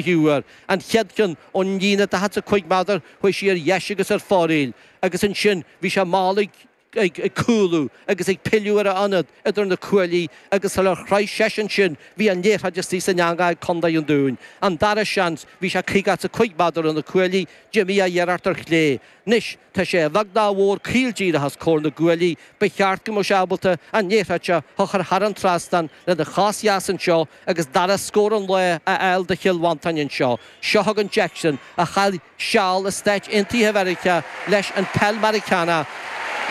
huair, an chéad cheann ón líne 45 meadar, chuaigh sí ar dheis agus ar fóraoil, agus ansin bhí sé mall ag ag cúlú agus ag pilleadh ar a ionad idir na cuaillí agus sular shroich seisean ansin bhí an liathróid istigh san eanga ag Contae an Dúin. An dara seans, bhí sé 55 meadar ó na cuaillí, d'imigh a iarracht ar chlé, Anois tá sé a bheag nó a mhór caol díreach os comhair na gcuaillí, ba cheart go mbeadh sé ábalta an liathróid seo a chur thar an trasnán lena chos dheas anseo agus dara scór an lae a fháil do Chill Mhantáin anseo. Seo chugainn Jackson, a chaith seal i Stáit Aontaithe Mheiriceá leis an peil Mheiriceánach,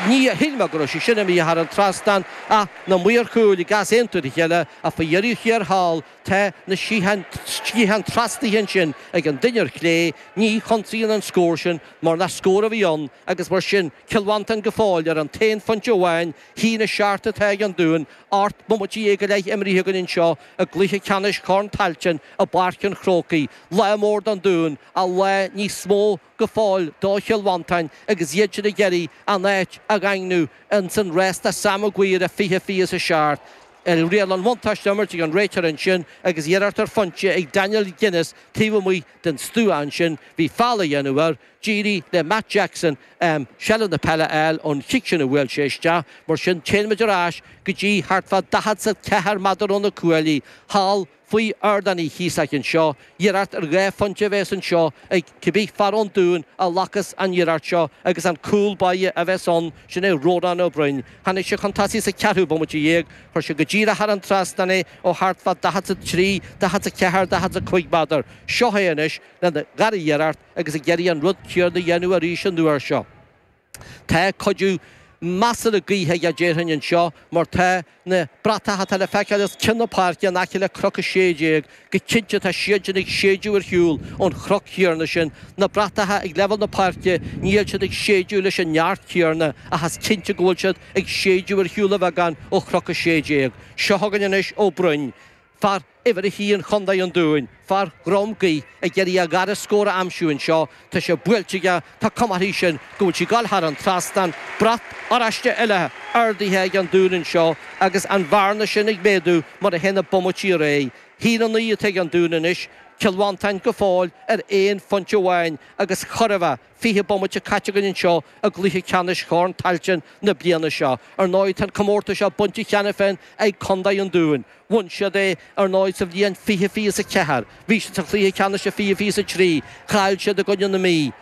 ní shíl mé go raibh sé sin imithe thar an trasnán ach na maoir chúil ag easaontú le chéile ach faoi dheireadh thiar thall, Tá na sciatháin trasnaithe ansin ag an duine ar chlé, ní chinntíonn an scór sin mar nach scór a bhí ann agus mar sin Cill Mhantáin go fóill ar an t-aon phointe amháin haon a seacht atá ag an Dún, ocht mbomaite dhéag go leith imrithe againn anseo i gcluiche ceannais Chorn Tailteann i bPáirc an Chrócaigh, lá mór don Dún, ach lá níos mó. go fóill do Chill Mhantáin agus iad sin ag iarraidh a n-áit a dhaingniú ins an rás do Sam Maguire fiche fiche 's a seacht. Riail an bhuntáiste imirt ag an réiteoir ansin agus iarracht ar phointe ag Daniel Guinness taobh amuigh den stua ansin, bhí foul á dhéanamh air. D'éirigh le Mark Jackson seilbh na peile a fháil ón chic sin a bhuail sé isteach, mar sin téann muid ar ais go dtí thart fá 44 meadar ó na cuaillí thall, Faoi Ardán Uí Chíosóig anseo, iarracht ar dhá phointe a bheas anseo ag cibé fear ón Dún a ghlacfas an iarracht seo agus an cúl báire a bheas ann, sin é Rónán Ó Broin. Tháinig sé chun tosaigh sa cheathrú bomaite dhéag, chuir sé go díreach thar an trasnán é ó thart fá daichead 's a trí, daichead 's a ceathair, daichead 's a cúig meadar. Seo é anois lena dhara iarracht agus ag iarraidh an rud céarna a dhéanamh arís an uair seo. Tá cuid measartha gaoithe aige déarfainn anseo mar tá na bratacha atá le feiceáil os cionn na páirce in aice le cnoc 16, go cinnte tá siad sin ag séideadh ar shiúl ón chnoc chéarna sin. Na bratacha ag leibhéal na páirce níl siad ag séideadh leis an neart céarna ach is cinnte go bhfuil siad ag séideadh ar shiúl a bheagán ó chnoc 16. Seo chugainn anois Ó Broin. Fear uimhir a haon Chontae an Dúin, fear Dhrom Gaoith, ag iarraidh a dhara scór a aimsiú anseo. Tá sé buailte aige, tá cuma uirthi sin go bhfuil sí ag dul thar an trasnán. Brat oráiste eile ardaithe ag an Dún anseo agus an bhearna sin ag méadú mar a théann na bomaití ar aghaidh. Haon a naoi atá ag an Dún anois, Cill Mhantáin go fóill ar aon phointe amháin agus chóir a bheith, Fiche bomaite caite againn anseo i gcluiche ceannais Chorn Tailteann na bliana seo. Ar ndóigh, tá an comórtas seo bainte cheana féin ag Contae an Dúin. Bhain siad é, ar ndóigh, sa bhliain fiche fiche 's a ceathair. Bhí siad sa chluiche ceannais sa fiche fiche 's a trí. Chaill siad i gcoinne na Mí.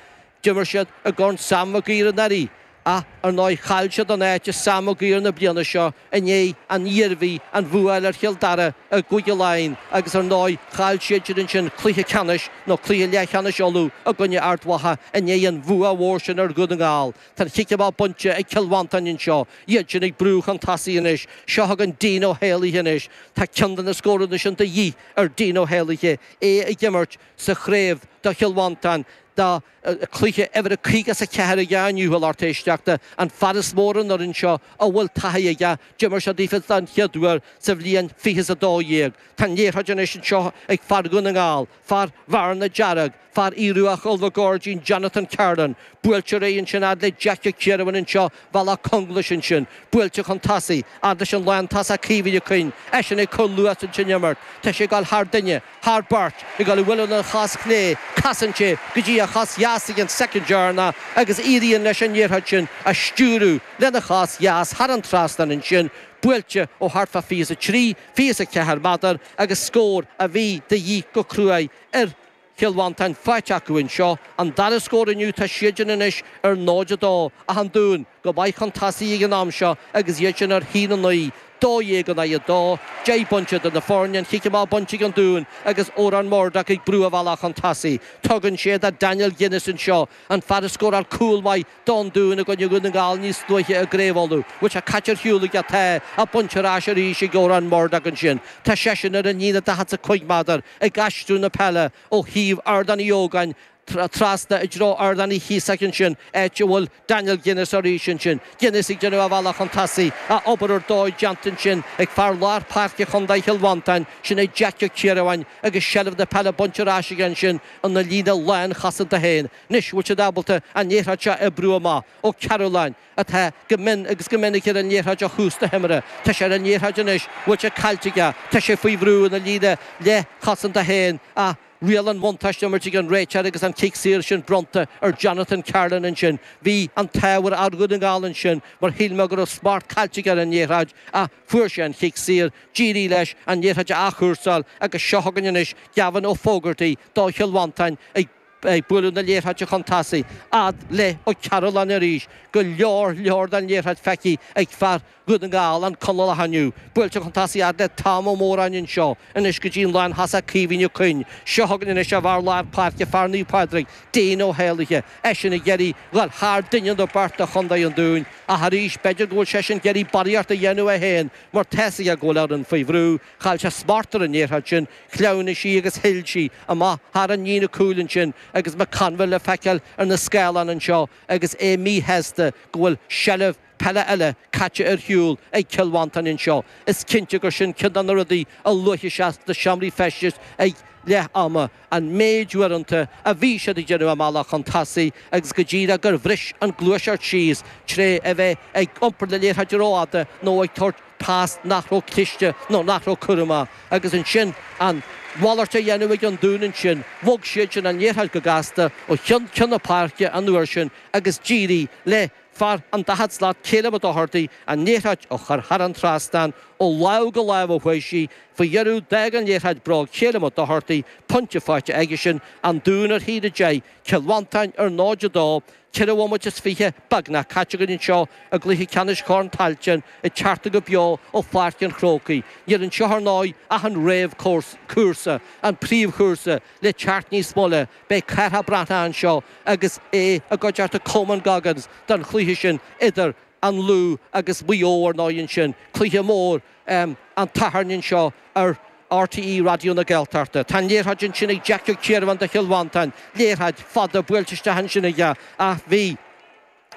D'imir siad i gCorn Sam Mhig Uidhir anuraidh. Ach ar ndóigh chaill siad an áit i Sam Maguire na bliana seo i ndiaidh don Iarmhí an bhua a fháil ar Chill Dara i gCúige Laighean agus ar ndóigh chaill siadsan ansin cluiche ceannais nó cluiche leathcheannais Uladh i gcoinne Ard Mhacha i ndiaidh an bhua mhór sin ar Dhún na nGall. Tá an chic amach bainte ag Cill Mhantáin anseo, iad sin ag brú chun tosaigh anois. Seo chugainn Dean Ó hÉalaithe anois. Tá ceann de na scóranna sin de dhíth ar Dean Ó hÉalaithe, é ag imirt sa chraobh do Chill Mhantáin, dá cluiche uimhir a caoga is a ceathair aige inniu, a lucht éisteachta, an fear is mó ar an fhoireann seo a bhfuil taithí aige, d'imir sé daofa don chéad uair sa bhliain fiche is a dó dhéag. Tá an liathróid anois anseo ag fear Dhún na nGall, fear Bhearna Dearg, fear Aodh Rua Chúil na gCuirridín, Jonathan Carlin. Buailtear é ansin fhad le Jack Ó Ciarubháin anseo Bhealach Conglais ansin, buailte chun tosaigh, fhad leis an lántosaí Caoimhín Ó Cuinn, eisean ag cur luas ins an imirt, tá sé ag goil thar duine, thar beirt, ag goil á bualadh lena chos chlé, casann sé go dtí a chos dheas ag an soicind deireanach agus éiríonn leis an liathróid sin a stiúradh lena chos dheas thar an trasnán ansin, buailte ó thart fá fiche 's a trí, fiche 's a ceathair méadar agus scór a bhí de dhíth go cruaidh ar Chill Mhantáin faighte acu anseo. An dara scór inniu tá siadsan anois ar 0, 2, ach an Dún go maith chun tosaigh ag an am seo agus iad sin ar a 1, 9, 12 in aghaidh 2, 10 bpointe idir na foirne an chic amach bainte ag an Dún agus Odhrán Murdock ag brú a bhealach chun tosaigh. Tugann sé do Daniel Guinness anseo, an fear a scóráil cúl maith don Dún i gcoinne Dhún na nGall níos luaithe i gCraobh Uladh, liathróid caite ar shiúl aige ach tá bainte ar ais arís ag Odhrán Murdock ansin. Tá seisean ar an líne daichead 's a cúig méadar, ag aistriú na peile ó thaobh Ardán Uí Ógáin trasna i dtreo Ardán Uí Chíosóig ansin, áit a bhfuil Daniel Guinness arís ansin. Guinness ag déanamh a bhealach chun tosaigh, ach obair ar dóigh déanta ansin ag fear lár páirce Chondae Chill Mhantáin, sin é Jeaic Ó Ciarubháin, agus seilbh na peile bainte ar ais aige ansin ina líne lánchosanta féin. Anois an bhfuil siad ábalta an liathróid seo a oibriú amach, Ó Cearúlláin, atá go mion agus go minic ar an liathróid ó thús na himeartha, tá sé ar an liathróid anois an bhfuil sé caillte aige, tá sé faoi bhrú ina líne leithchosanta féin ach riail an bhuntáiste á himirt ag an réiteoir agus an cic saor sin bronnta ar Jonathan Carlin ansin. Bhí an t-ádh ar fhear Dhún na nGall ansin mar shíl mé go raibh smacht caillte aige ar an liathróid ach fuair sé an chic saor d'éirigh leis an liathróid a athchúrsáil agus seo chugainn anois Gavin Ó Fógartaigh do Chill Mhantáin ag ag bualadh na liathróide chun tosaigh, fhad le Ó Cearúlláin arís, go leor leor den liathróid feicthe ag fear Dhún na nGall, an Conallach inniu, buailte chun tosaigh fhad le Tom Ó Móráin anseo, anois go dtí an lántosaí Caoimhín Ó Cuinn, seo chugainn anois an fear lár páirce fear Naomh Pádraig, Dean Ó hÉalaithe, eisean ag iarraidh dhul thar duine nó beirt de chontae an Dúin, ach arís b'fheidir go bhfuil seisean ag iarraidh barraíocht a dhéanamh é féin mar tá's aige go bhfuil a fhoireann faoi bhrú, Chaill sé smacht ar an liathróid sin, shleamhnaigh sí agus shil sí amach thar an líne cúil ansin agus McConville le feiceáil ar na scáileáin anseo agus é míshásta go bhfuil seilbh peile eile caite ar shiúl ag Cill Mhantáin anseo. Is cinnte gur sin ceann de na rudaí a luafaidh sé sna seomraí feistis ag leath ama. an méid uaireanta a bhí siad ag déanamh a mbealach chun tosaigh agus go díreach gur bhris an gluaiseacht síos tré a bheith ag iompar na liathróide rófhada nó ag tabhairt pas nach raibh cliste nó nach raibh cúramach agus ansin an mhalairt á dhéanamh ag an Dún ansin bhog siadsan an liathróid go gasta ó cheann ceann na páirce an uair sin agus d'éirigh le Fear an daichead slat Ceilum Ó Dochartaigh an liathróid a chur thar an trasnán ó láimh go láimh a chuaigh sí. Faoi dheireadh, d'fhág an liathróid bróg Ceilum Ó Dochartaigh, pointe faighte aigesean, An Dún ar a haon a deich, Cill Mhantáin ar 0-2, Ceithre bhomaite is fiche beagnach caite againn anseo i gcluiche ceannais Chorn Tailteann, ag teacht go beo ó Pháirc an Chrócaigh. Níl anseo, ar ndóigh, ach an réamh-chúrsa, an príomhchúrsa, le teacht níos moille, Beidh Cathal Breathnach anseo agus é i gcuideachta Coman Goggins don chluiche sin idir an Lú agus Maigh Eo ar ndóigh ansin, cluiche mór an tSathairn anseo ar RTÉ Raidió na Gaeltachta. Tá an liathróid ansin ag Jack Kirwan do Chill Mhantáin, liathróid fada buailte isteach ansin aige ach bhí.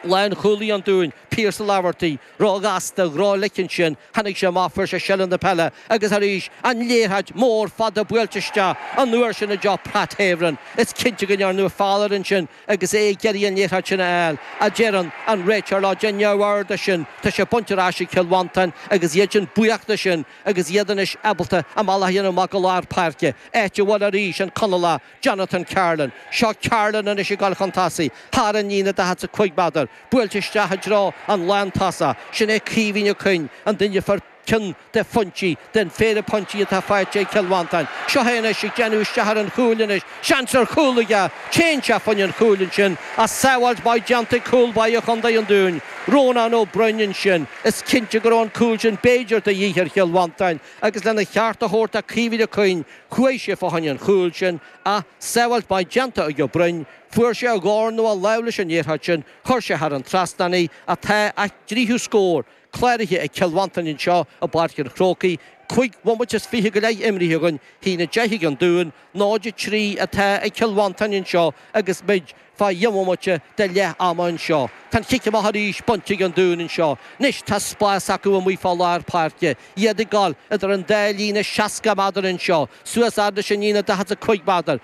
Lánchúlaí an Dúin, Pierce Laverty, ró-ghasta, ró-ghlic ansin, tháinig sé amach, fuair sé seilbh na peile agus arís an liathróid mór fada buailte isteach, an uair sin i dtreo Pat Havern. Is cinnte go ndearnadh foul air ansin agus é ag iarraidh an liathróid sin a fháil, ach deireann an réiteoir leo. Déan neamhaird de sin, tá sé bainte ar ais ag Cill Mhantáin agus iadsan buíoch de sin agus iad anois ábalta a mbealach a dhéanamh amach go lár páirce, áit a bhfuil arís an Conallach, Jonathan Carlin, seo Carlin anois ag dul chun tosaigh, thar an líne 45 méadar, buailte isteach i dtreo an lántosaithe. Sin é Caoimhín Ó Cuinn, an duine a fuair ceann de phointí, den phéire pointí atá faighte ag Cill Mhantáin. Seo é anois ag déanamh isteach ar an chúl anois, seans ar chúl aige, téann sé fá choinne an chúil ansin, ach sábháilt mhaith déanta ag cúl báire Chontae an Dúin, Rónán Ó Broin ansin. Is cinnte go raibh an cúl sin b'fhéidir de dhíth ar Chill Mhantáin agus lena cheart a thabhairt do Caoimhín Ó Cuinn, Chuaigh sé fá choinne an chúil sin, ach sábháilt maith déanta ag Ó Broin, fuair sé a dhorn nó a lámh leis an liathróid sin, chuir sé thar an trasnán í, ach tá a dtríú scór cláraithe ag Cill Mhantáin anseo i bPáirc an Chrócaigh, cúig bhomaite is fiche go leith imrithe againn, a haon a deich ag an Dún, 0-3 atá ag Cill Mhantáin anseo agus muid. Fá dheich mbomaite de leath ama anseo, tá an chic amach arís bainte ag an Dún anseo. Anois tá spás acu amuigh fá lár páirce, iad ag dul idir an dá líne 60 méadar anseo, suas fhad leis an líne 45 méadar,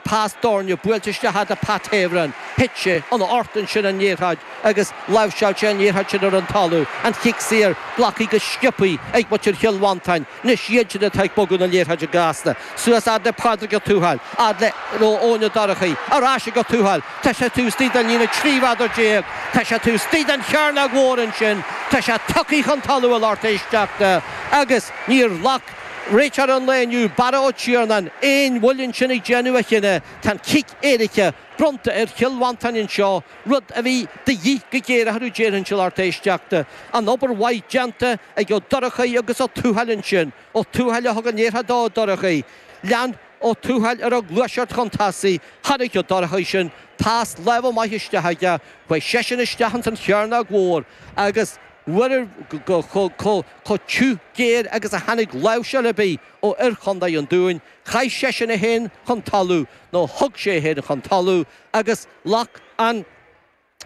pas doirn buailte isteach fhad le Pat Havern, thit sé ina ucht ansin an liathróid agus láimhseáil sé an liathróid sin ar an talamh, an chic saor glactha go sciopaí ag muintir Chill Mhantáin. Anois iad sin atá ag bogadh na liathróide gasta suas, fhad le Pádraig Ó Tuathail, fhad le, nó Eoin Ó Dorchaí, ar ais ag Ó Tuathail, tá sé taobh istigh den líne 13 mhéadar, tá sé taobh istigh den chearnóg mhór ansin, tá sé tugtha chun talaimh, a lucht éisteachta, agus níor ghlac réiteoir an lae inniu, Barra Ó Tiarnáin, aon mhoill ansin ag déanamh a chinneadh. Tá an cic éirice bronnta ar Chill Mhantáin anseo. rud a bhí de dhíth go géar orthu déarfainnse, a lucht éisteachta. An obair mhaith déanta ag Ó Dorchaí agus Ó Tuathail ansin. Ó Tuathail a thug an liathróid do Ó Dorchaí. Lean Ó Tuathail air ag gluaiseacht chun tosaigh. Chonaic Ó Dorchaí sin, pas láimhe maith isteach aige. Chuaigh seisean isteach ins an chearnóg mhór agus bhuel chomh tiubh géar agus a tháinig láimhseáil ar bith ó fhir Chondae an Dúin. Chaith seisean é féin chun talaimh, nó thug sé é féin chun talaimh, agus. Ghlac an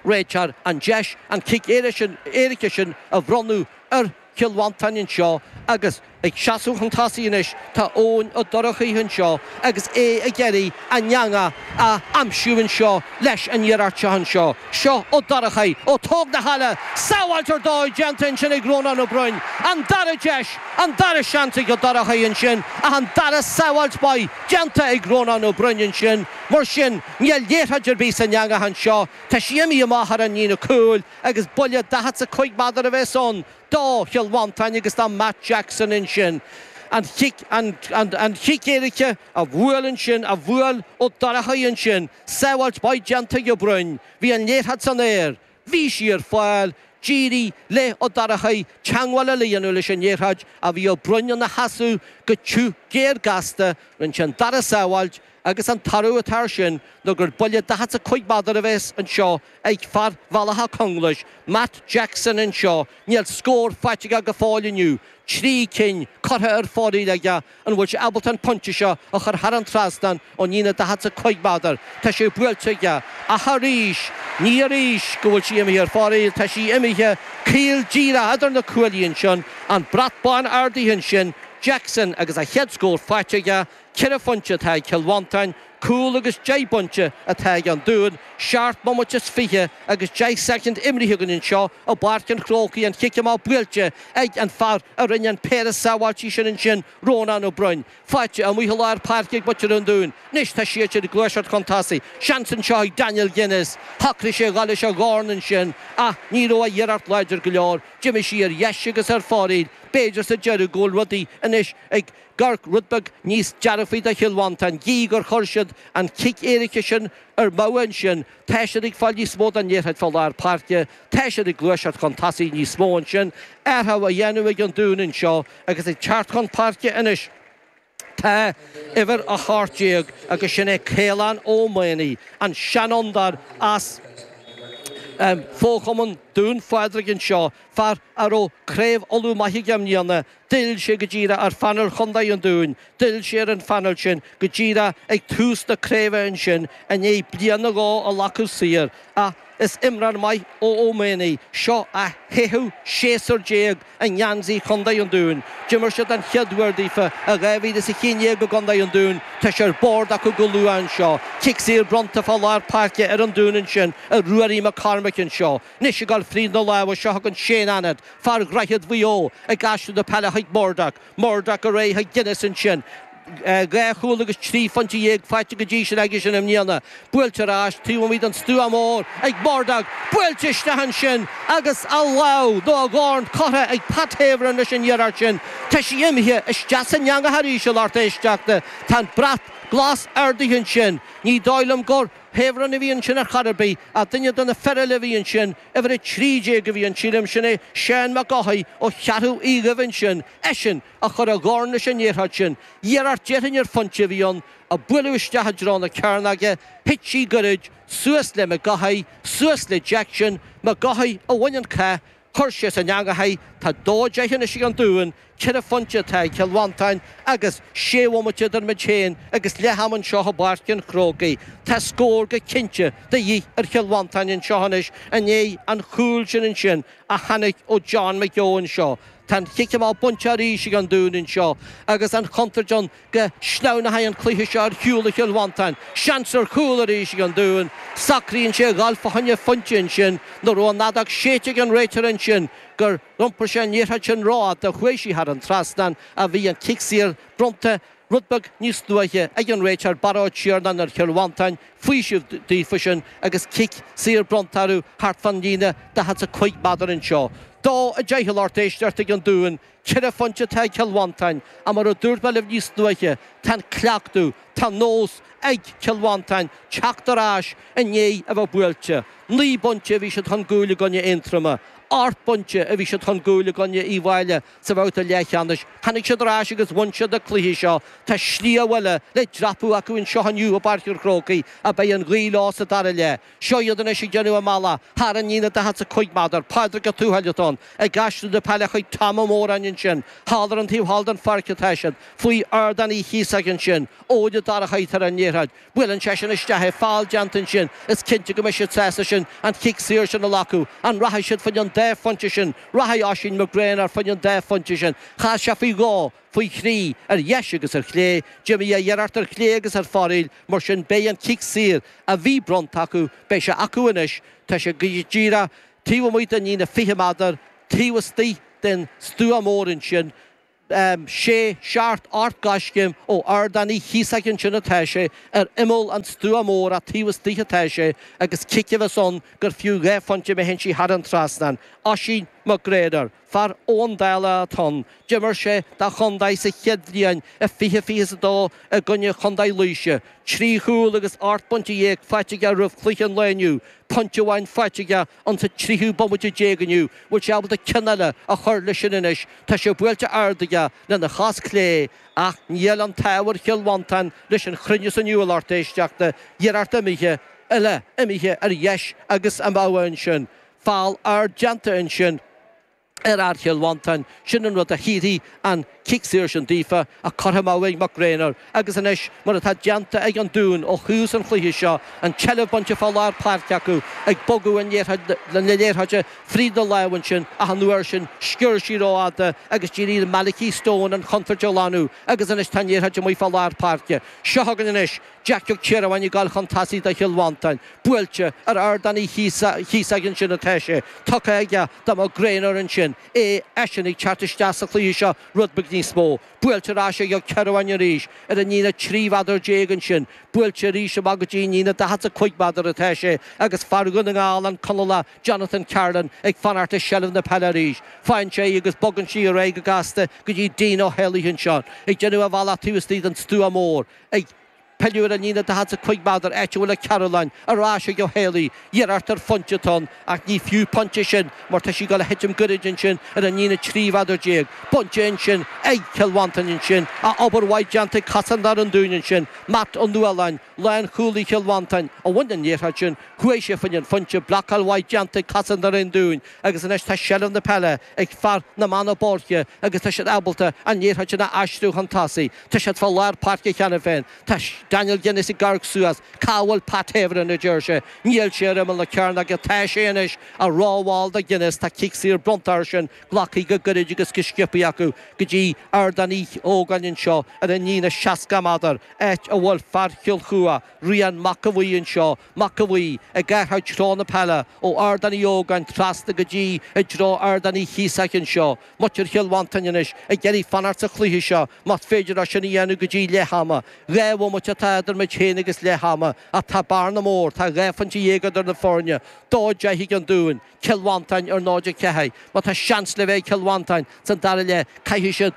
réiteoir an deis an cic éirice sin a bhronnadh ar Chill Mhantáin anseo agus ag seasamh chun tosaigh anois tá Eoin Ó Dorchaí anseo agus é ag iarraidh an eanga a aimsiú anseo leis an iarracht seo anseo. Seo Ó Dorchaí ó Tigh na hÉille, sábháilt ar dóigh déanta ansin ag Rónán Ó Broin. An dara deis, an dara seans ag Ó Dorchaí ansin ach an dara sábháilt mhaith déanta ag Rónán Ó Broin ansin mar sin. Níl liathróid ar bith san eangach anseo. Tá sí imithe amach thar an líne cúil agus buille daichead 's a cúig méadar a bheas ann do Chill Mhantáin agus do Mark Jackson ansin. An chic, an, an, an chic éirice a bhuail ansin, a bhuail Ó Dorchaí ansin, sábháilt mhaith déanta ag Ó Broin. Bhí an liathróid san aer. Bhí sí ar fáil. D'éirigh le Ó Dorchaí teangmháil a dhéanamh leis an liathróid ach bhí Ó Broin ina sheasamh go tiubh géar gasta. Rinne sé an dara sábháilt, agus an toradh atá ar sin ná gur buille daichead 's a cúig méadar a bhéas anseo ag fear Bhealach Conglais, Mark Jackson anseo. Níl scór faighte aige go fóill inniu, trí cinn curtha ar fóraoil aige, An bhfuil sé ábalta an pointe seo a chur thar an trasnán ón líne 45 méadar? Tá sé buailte aige. Ach arís, ní arís go bhfuil sí imithe ar fóraoil, tá sí imithe caol díreach eadar na cuaillí ansin, an brat bán ardaithe ansin, Jackson agus a chéad scór faighte aige, ceithre phointe atá ag Cill Mhantáin, Cúl agus deich bpointe atá ag an Dúin, seacht mbomaite is fiche agus deich soicind imrithe againn anseo i bPáirc an Chrócaigh, an chic amach buailte ag an fear a rinne an péire sábháiltí sin ansin, Rónán Ó Broin. Faighte amuigh i lár páirce ag muintir an Dúin. Anois tá siad sin ag gluaiseacht chun tosaigh. Seans anseo ag Daniel Guinness. Shocraigh sé dhul leis an dhorn ansin ach ní raibh a iarracht láidir go leor. D'imigh sí ar dheis agus ar fóraoil. B'fhéidir sa deireadh go bhfuil rudaí anois ag Ag amharc rud beag níos dearfaí do Chill Mhantáin, gidh gur chuir siad an cic éirice sin amú ansin, tá siad ag fáil níos mó den liathróid fá lár páirce, tá siad ag gluaiseacht chun tosaigh níos mó ansin, athrú á dhéanamh ag an Dún anseo agus ag teacht chun páirce anois. Tá uimhir 18 agus sin é Caolán Ó Maonaigh, an seanfhondúir as fochumann Dún Phádraig anseo, fear a raibh Craobh Uladh maith aige i mbliana D'fhill sé go díreach ar phaineál Chontae an Dúin, d'fhill sé ar an phaineál sin go díreach ag tús na craoibhe ansin i ndiaidh bliain nó dhó a ghlacadh saor, ach is imreoir maith é Ó Maonaigh seo a chaith aon séasúr déag i ngeansaí Chontae an Dúin. D'imir sé den chéad uair daofa i dhá mhíle is a haon dhéag i gContae an Dúin, tá sé ar bord acu go luath anseo. Cic saor bronnta fá lár páirce ar an Dún ansin ar Ruairí Mac Cormaic anseo. Anois ag dul fríd na lámha seo chugainn Shane Annett, fear Dhroichead Mhaigh Eo, ag aistriú na peile chuig Murdock. Murdock ar aghaidh chuig Guinness ansin. Dhá chúl agus trí phointe dhéag faighte go dtí sin aigesean i mbliana. Buailte ar ais taobh amuigh den stuá mór ag Murdock. Buailte isteach ansin agus a lámh nó a dhorn curtha ag Pat Havern leis an iarracht sin. Tá sí imithe isteach san eangach arís a lucht éisteachta. Tá an brat glas ardaithe ansin. Ní dóigh liom gur. Havern a bhí ansin ar chor ar bith, ach duine de na fir eile a bhí ansin, uimhir 13 a bhí ann sílim, sin é Seán Mac Eochaidh ó Cheathrú Aodha Dhuibh ansin, eisean a chuir a dhorn leis an iarracht sin. Iarracht déarfainn ar phointe a bhí ann, a buaileadh isteach i dtreo na cearnóige, thit sí goirid, suas le Mac Eochaidh, suas le Jackson, Mac Eochaidh a bhain an cath, Chuir sé san eangach í, tá dó deich anois ag an Dún, ceithre phointe atá ag Cill Mhantáin agus sé bhomaite idir muid féin agus leath am anseo i bPáirc an Chrócaigh. Tá scór go cinnte de dhíth ar Chill Mhantáin anseo anois i ndiaidh an chúil sin ansin a tháinig ó John McGeough seo. Tá an chic amach bainte arís ag an Dún anseo agus an chontúirt ann Go sleamhnóidh an cluiche seo ar shiúl ó Chill Mhantáin. Seans ar chúl arís ag an Dún. Socraíonn sé a ghabháil fá choinne pointe ansin nó an raibh an fheadóg séidte ag an réiteoir ansin gur iompair sé an liathróid sin ró-fhada chuaigh sí thar an trasnán ach bhí an cic saor bronnta rud beag níos luaithe ag an réiteoir Barra Ó Tiarnáin ar Chill Mhantáin faoiseamh daofa sin agus cic saor bronnta orthu thart fan líne 45 méadar anseo. 2:10 a lucht éisteachta ag an Dún. Ceithre phointe atá ag Cill Mhantáin, ach mar a dúirt mé libh níos luaithe, tá an cleachtadh, tá nós ag Cill Mhantáin teacht ar ais i ndiaidh a bheith buailte. Naoi bpointe a bhí siad chun gcúil i gcoinne Aontroma. Ocht bpointe a bhí siad chun gcúil i gcoinne Uíbh Fhailí sa bhabhta leathcheannais. Tháinig siad ar ais agus bhain siad na cluichí seo. Tá sliabh eile le dreapadh acu anseo inniu i bPáirc an Chrócaigh, ach beidh an ghaoth leo sa dara leath. Seo iad anois ag déanamh a mbealach thar an líne 45 meadar, Pádraig Ó Tuathail atá ann, ag aistriú na peile chuig Tom Ó Móráin ansin, thall ar an taobh thall den pháirc atá siad, faoi Ardán Uí Chíosóig ansin, Eoin Ó Dorchaí ar an liathróid, buaileann seisean isteach é, feall déanta ansin, is cinnte go mbeidh siad sásta ansin an chic saor sin a ghlacadh, an rachaidh siad faoin an dá phointe sin, rachaidh Oisín McGraynor faoin an dá phointe sin, chas sé faoi dhó, faoi thrí, ar dheis agus ar chlé, d'imigh a iarracht ar chlé agus ar foraíl, mar sin beidh an cic saor, a bhí bronnta acu, beidh sé acu anois, tá sé go díreach taobh amuigh den líne fiche meadar, taobh istoigh den stua mór ansin, sé seacht ocht gcoiscéim ó ardán Uí Chíosóig ansin atá sé, ar imeall an stua mór ach taobh istoigh atá sé, agus cic a mbeas ann gur fiú dhá phointe má théann sí thar an trasnán. Oisín McGraynor. Fear ón dáil athuair. D'imir sé dá chontae sa chéad bhliain 2022 i gcoinne Chontae Laoise. Trí chúl agus ocht bpointe dhéag faighte aige roimh chluiche an lae inniu, pointe amháin faighte aige sa 30ú bomaite déag inniu. Bhfuil sé ábalta ceann eile a chur leis sin anois? Tá sé buailte ard aige lena chos clé ach níl an t-ádh ar Chill Mhantáin leis an chruinneas inniu, a lucht éisteachta, iarracht eile imithe ar dheis agus amú ansin Feall a bhí déanta ansin ar fhear Chill Mhantáin, sin an rud a thabharfadh an cic saor sin daofa a cuireadh amú ag McGraynor, agus anois, mar atá déanta ag an Dún ó thús an chluiche seo, an tseilbh bainte fá lár páirce acu, ag bogadh na liathróide fríd na lámha ansin, ach an uair sin, sciorr sí rófhada agus d'éirigh le Malachy Stone an chontúirt a ghlanadh, agus anois tá an liathróid amuigh fá lár páirce. Seo chugainn anois. Jack Ó Ciarubháin ag dul chun tosaigh do Chill Mhantáin. Buailte ar Ardán Uí Chíosóig ansin atá sé. Tugtha aige do Mac Gréanóir ansin é, eisean ag teacht isteach sa chluiche seo rud beag níos mó. Buailte ar ais ag Ó Ciarubháin arís ar an líne 13 mheadar ansin. Buailte arís amach go dtí an líne 45 meadar atá sé ag fear Dhún na nGall, an Conallach Jonathan Carlin, ag fanacht i seilbh na peile arís. Faigheann sé í agus bogann sí ar aghaidh go gasta go dtí Dean Ó hÉalaithe ansin, ag déanamh a bhealach taobh istigh den stua mór. Ag pilleadh ar an líne daichead sa cúig mheadar áit a bhfuil Carlin ar ais ag Ó hÉalaí, iarracht ar phointe atá ann ach ní fiú pointe sin mar tá sí ag dul a thitim gairid ansin ar an líne trí mheadar déag. Bainte ansin ag Cill Mhantáin ansin ach obair mhaith déanta ag cosantóirí an Dúin ansin, Malachy Ó Nualláin, lánchúlaí Chill Mhantáin, a bhain an liathróid sin, chuaigh sé faoin an phointe, blocáil mhaith déanta ag cosantóirí an Dúin agus anois tá seilbh na peile ag fir na mBeanna Boirche agus tá siad ábalta an liathróid sin a aistriú chun tosaigh. Tá siad fá lár páirce cheana féin. Tá Daniel Guinness ag amharc suas. Cá bhfuil Pat Havern? a deir sé. Níl sé ar imeall na cearnóige ach tá sé anois. Á rómhall do Guinness, tá cic saor bronnta ansin, glactha go gairid agus go sciobtha acu go dtí Ardán Uí Ógáin anseo ar an líne 60 meadar, áit a bhfuil fear Chill Chua, Rian Mac a Bhuí, anseo. Mac a Bhuí, ag teacht i dtreo na peile, ó Ardán Uí Ógáin trasna go dtí i dtreo Ardán Uí Chíosach anseo, Muintir Chill Mhantáin anois ag iarraidh fanacht sa chluiche seo más féidir leo sin a dhéanamh go dtí leath ama. Dhá bhomaite atá idir muid féin agus leath ama ach tá bearna mhór, tá dhá phointe dhéag idir na foirne, 2-10 ag an Dún, Cill Mhantáin ar 0-4. Má tá seans le bheith ag Cill Mhantáin san dara leath caithfidh siad.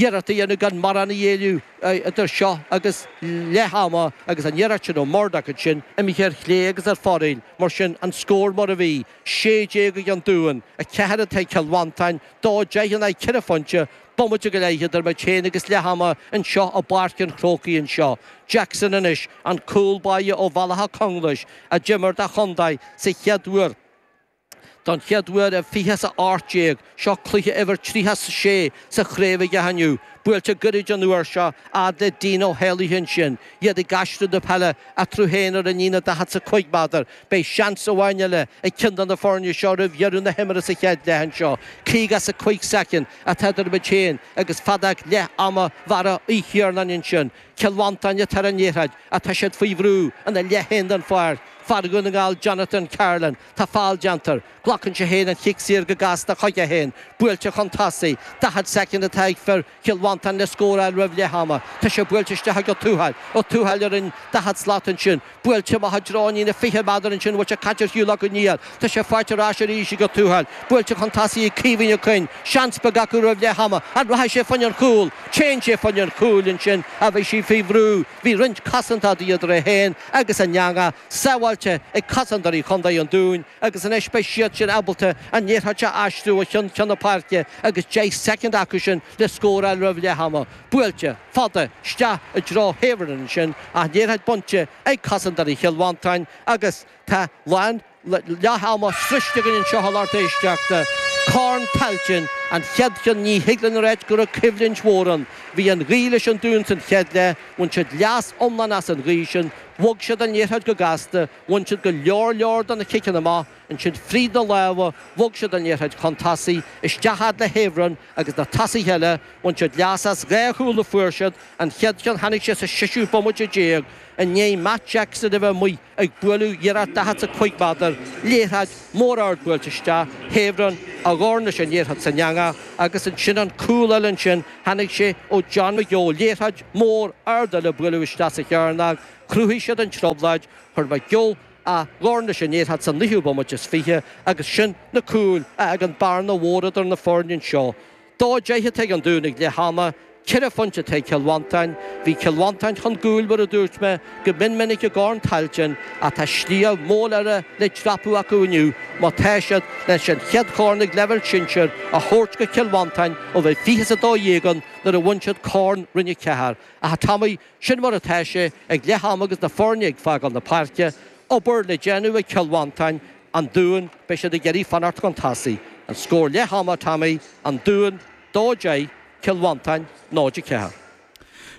iarracht a dhéanamh gan mórán a ghéilleadh idir seo agus leath ama agus an iarracht sin ó Murdoch ansin imithe ar chlé agus ar fóraoil. Mar sin an scór mar a bhí, sé déag ag an Dún, a ceathair atá ag Cill Mhantáin, dó deich in aghaidh ceithre phointe, bomaite go leith idir muid féin agus leath ama anseo i bPáirc an Chrócaigh anseo. Jackson anois, an cúl báire ó Bhaile Átha Conglais, a d'imir dá chontae don chéad uair, Don chéad uair i 20 is a 18, seo cluiche uimhir 30 is 6 sa chraobh aige inniu. Buailte goirid an uair seo, a fhad le Dean Ó hÉallaithe ansin, iad ag aistriú na peile eatarthu féin ar an líne daichead is a cúig méadar. Beidh seans amháin eile ag ceann de na foirne seo roimh dheireadh na himeartha sa chéad leath anseo. Cúig as a cuig soicind atá idir muid féin agus feadóg leath ama Bharra Uí Chiaráin ansin. Cill Mhantáin atá ar an liathróid, atá siad faoi bhrú ina leath féin den pháirc, fear Dhún na nGall Jonathan Carolan, Tá feall déanta air. Glacann sé féin an cic saor go gasta chuige féin. Buailte chun tosaigh. Daichead soicind atá ag fir Chill Mhantáin le scóráil roimh leath ama. Tá sé buailte isteach ag Ó Tuathail. Ó Tuathail ar an daichead slat ansin. Buailte i dtreo na fiche méadar ansin a bhfuil sé caite ar shiúl acu aniar. Tá sé faighte ar ais arís ag Ó Tuathail. Buailte chun tosaigh ag Caoimhín Ó Coinn. Seans beag acu roimh leath ama. An rachaidh sé fá choinne an chúil? Téann sé fá choinne an chúil ansin ach bhí sé faoi bhrú. Bhí roinnt cosantóirí idir é féin agus an eangach. sábháilte ag cosantóirí Chontae an Dúin agus anois beidh siad sin ábalta an liathróid seo a aistriú ó cheann ceann na páirce agus 10 soicind acu sin le scóráil roimh leath ama, buailte, fada, isteach i dtreo Havern ansin ach liathróid bainte ag cosantóirí Chill Mhantáin agus tá lán leath ama sroichte againn anseo a lucht éisteachta Corn Tailteann an chéad cheann ní thig linn a ráit go raibh coimhlint mhór ann, bhí an ghaoth leis an Dún san chéad leath, bhain siad leas iomlán as an ghaoth sin. Bhog siad an liathróid go gasta, bhain siad go leor leor de na ciceanna amach, ansin fríd na lámha, bhog siad an liathróid chun tosaigh, isteach fhad le Havern agus na tosaithe eile, bhain siad leas as dhá chúl a fuair siad, an chéad cheann tháinig sé sa séú bomaite déag, i ndiaidh Mark Jackson a bheith amuigh ag bualadh iarracht daichead 's a cúig méadar, liathróid mhór ard buailte isteach, Havern a dhorn leis an liathróid san eangach agus ansin an cúl eile ansin, Tháinig sé ó John McGeough, liathróid mhór ard eile a buaileadh isteach sa chearnóg, chruthaigh siad an trioblóid, chuir McGeough a dhorn leis an liathróid sa naoú bomaite is fiche, agus sin na cúil a d'fhág an bearna mhór idir na foirne anseo. Dó deich atá ag an Dún ag leath ama, ceithre phointe atá ag Cill Mhantáin. Bhí Cill Mhantáin chun cúil, mar a dúirt mé, Go mion minic i gCorn Tailteann, ach tá sliabh mór eile le dreapadh acu inniu má tá siad leis an chéad chorn ag leibhéal sinsir a thabhairt go Cill Mhantáin ó bhí 20 is 12 ann nuair a bhain siad Corn Roinn 4. Ach, a Thomaí, sin mar atá sé ag leath ama agus na foirne ag fágáil na páirce. Obair le déanamh ag Cill Mhantáin, An Dún, beidh siad ag iarraidh fanacht chun tosaigh. An scór leath ama, a Thomaí, An Dún 2 10 Cill Mhantáin 0 4.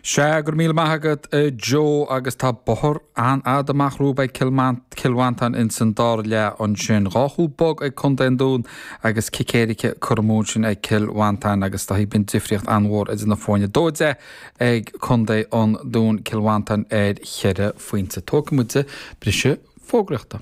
Sea, go raibh míle maith agat a Joe agus tá bothar an-fhada amach rompu ag Cill Mant, Cill Mhantáin ins an dara leath ansin. Dhá chúl bog ag Contae an Dúin agus cic éirice curtha amú ansin ag Cill Mhantáin agus dá bhíthin difríocht an-mhór idir na foirne. 2-10 ag Contae an Dúin, Cill Mhantáin ar cheithre phointe. Tógfaidh muid briseadh fógraíochta.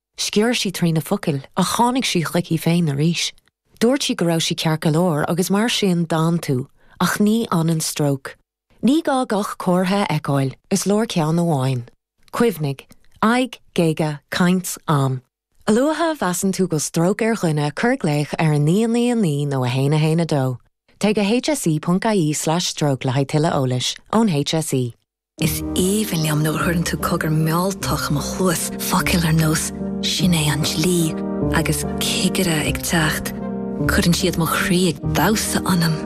Sciorr sí trína focail ach tháinig sí chuici féin arís. Dúirt sí go raibh sí ceart go leor agus mar sin d'fhan tú, ach ní fhanann stróc. Ní gá gach comhartha a fheiceáil, is leor ceann amháin. Cuimhnigh, aghaidh, géaga, caint, am. A luaithe a mheasann tú go bhfuil stróc ar dhuine cuir glaoch ar 999 nó 112. Téigh go hse.ie/stroke le haghaidh tuilleadh eolais, ón hse. Is aoibhinn liom nuair a chuireann tú cogar mealltach i mo chluas, focail ar nós 'Sin é an dlí' agus 'Cigire ag teacht', cuireann siad mo chroí ag damhsa ionam!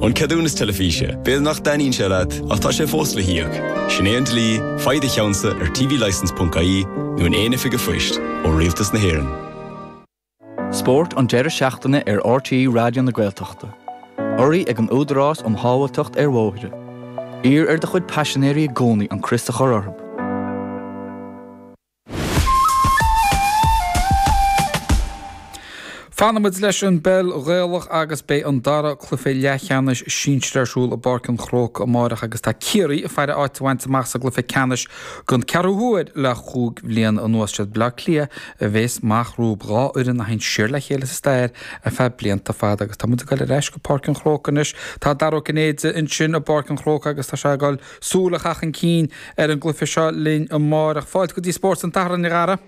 An ceadúnas teilifíse, b'fhéidir nach dtaitníonn sé leat, ach tá sé fós le híoc. Sin é an dlí, faigh do cheannsa ar tvlicence.ie nó in aon oifig an phoist ó Rialtas na hÉireann. Spórt an deireadh seachtaine ar RTÉ Raidió na Gaeltachta. Urraithe ag an Údarás um Shábháilteacht ar Bhóithre. Iarr ar do chuid paisinéirí i gcónaí an crios a chur orthu. Fanfaimid leis an bpeil Ghaelach agus beidh an dara cluiche leathcheannais sinsir ar siúl i bPáirc an Chrócaigh amárach agus tá Ciarraí ag faire áit a bhaint amach sa gcluiche ceannais Don ceathrú huair le chúig bhliain anuas is iad Baile Átha Cliath a bhéas amach rompu, dhá fhoireann a théann siar le chéile sa stair ar feadh blianta fada agus tá muid ag dul ar ais go Páirc an Chrócaigh anois. Tá Dara Ó Cinnéide ansin i bPáirc an Chrócaigh agus tá sé ag dul súil a chaitheamh chun cinn ar an gcluiche seo linn amáireach. Fáilte go dtí Spórt an tSathairn, a Dhara.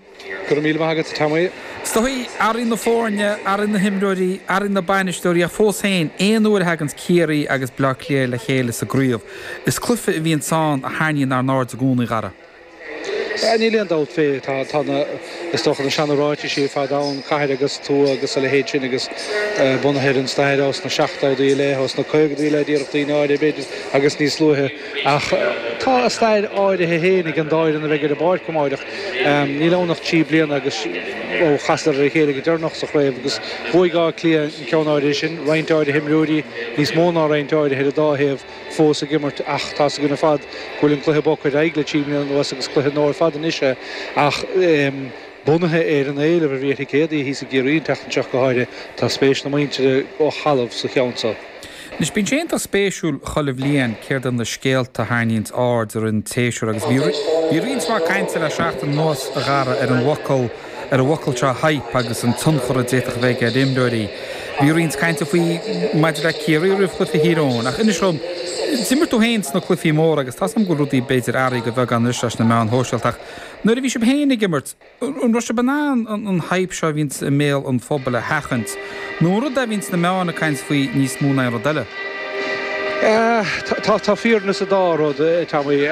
Go raibh míle maith agat, Tommy. Is dóichí athraíonn na foirne, athraíonn na himreoirí, athraíonn na bainisteoirí ach fós féin, aon uair a thaganns Ciarraí agus Bleá Cliath le chéile sa gcraobh, is cluiche a bhíonn ann a tharraingíonn ár n-aird i gcónaí, a Dhara. Níl aon dabht fé. Tá na, is dócha, na seana ráitisí ar fad ann, cathair agus tuath agus a leithéid sin agus bunaithe ar an stair ó sna seachtódaí i leith, ó sna caogadaí i leith, déarfadh daoine áirithe, b'fhéidir, agus níos luaithe. Ach tá a stair áirithe féin ag an dá fhoireann a bheidh ar an bpáirc amáireach. Níl ann ach trí bliana agus ó chasadar ar a chéile go deireanach sa chraobh agus bhuaigh Áth Cliath an ceann áirithe sin, roinnt áirithe imreoirí, níos mó ná roinnt áirithe ar an dá thaobh, fós ag imirt ach tá's againn ar fad go bhfuil an cluiche bogtha ar aghaidh le trí bliana anuas agus cluiche nua ar fad anois é ach Bunaithe ar an éileamh a bhí ar thicéadaí thíos i gCiarraí an tseachtain seo go háirithe, tá spéis na muintire ó thalamh sa cheann seo. Anois, bíonn sé iontach spéisiúil chuile bhliain céard iad na scéalta a tharraingíonns aird i rith an tséasúir agus bhí, bhí roinnt mhaith cainte le seachtain anuas a Dhara ar an bhfocal, ar an bhfocal seo 'hype' agus an tionchar a d'fhéadfadh a bheith aige ar imreoirí. Bhí roinnt cainte faoi, maidir le Ciarraí roimh chluiche Thír Eoghain ach inis dom, d'imir tú féin sna cluichí móra agus tá's agam go bhfuil rudaí b'fhéidir athraithe de bheagán anois leis na meáin shóisialta ach, Nuair a bhí sibh féin ag imirt, an raibh sibh in ann an hype seo a bhíonn i mbéal an phobail a sheachaint, nó an rud é a bhíonn na meáin ag caint faoi níos mó ná aon rud eile? Tá fírinne sa dá rud, a Tommy.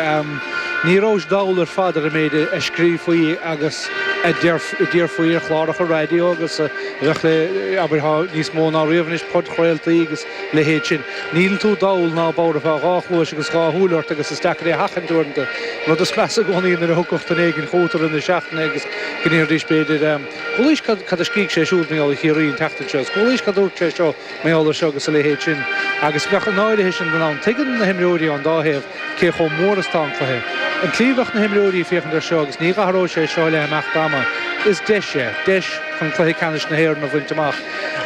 Ní rabhais dall ar fad ar an méid a scríofaí agus a déarfaí ar chláracha raidió agus a bheadh le, abair, níos mó ná riamh anois, podchraoltaí agus leithéid sin. Níl tú dall ná bodhar, tá dhá chluais agus dhá shúil ort agus is deacair é a sheachaint uaireanta. An rud is measa i gcónaí nuair a thiocfadh duine éigin chugat i rith na seachtaine agus go ndéarfaidís b'fhéidir, 'ar chualaís cad a scrígh sé siúd, mar gheall ar Chiarraí, an tseachtain seo? Is ar chualaís cad a dúirt sé seo, mar gheall air seo agus a leithéid sin. Agus bheadh i ndáiríre sin don am. Tuigeann na himreoirí ón dá thaobh. cé chomh mór is tá an cluiche. An tslí a bheadh na himreoirí ag féachaint air seo, agus ní athróidh sé seo le himeacht ama, is deis é, deis chun Cluiche Ceannais na hÉireann a bhaint amach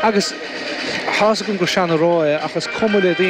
agus tá's agam gur sean-rá é ach is cuma le daoine,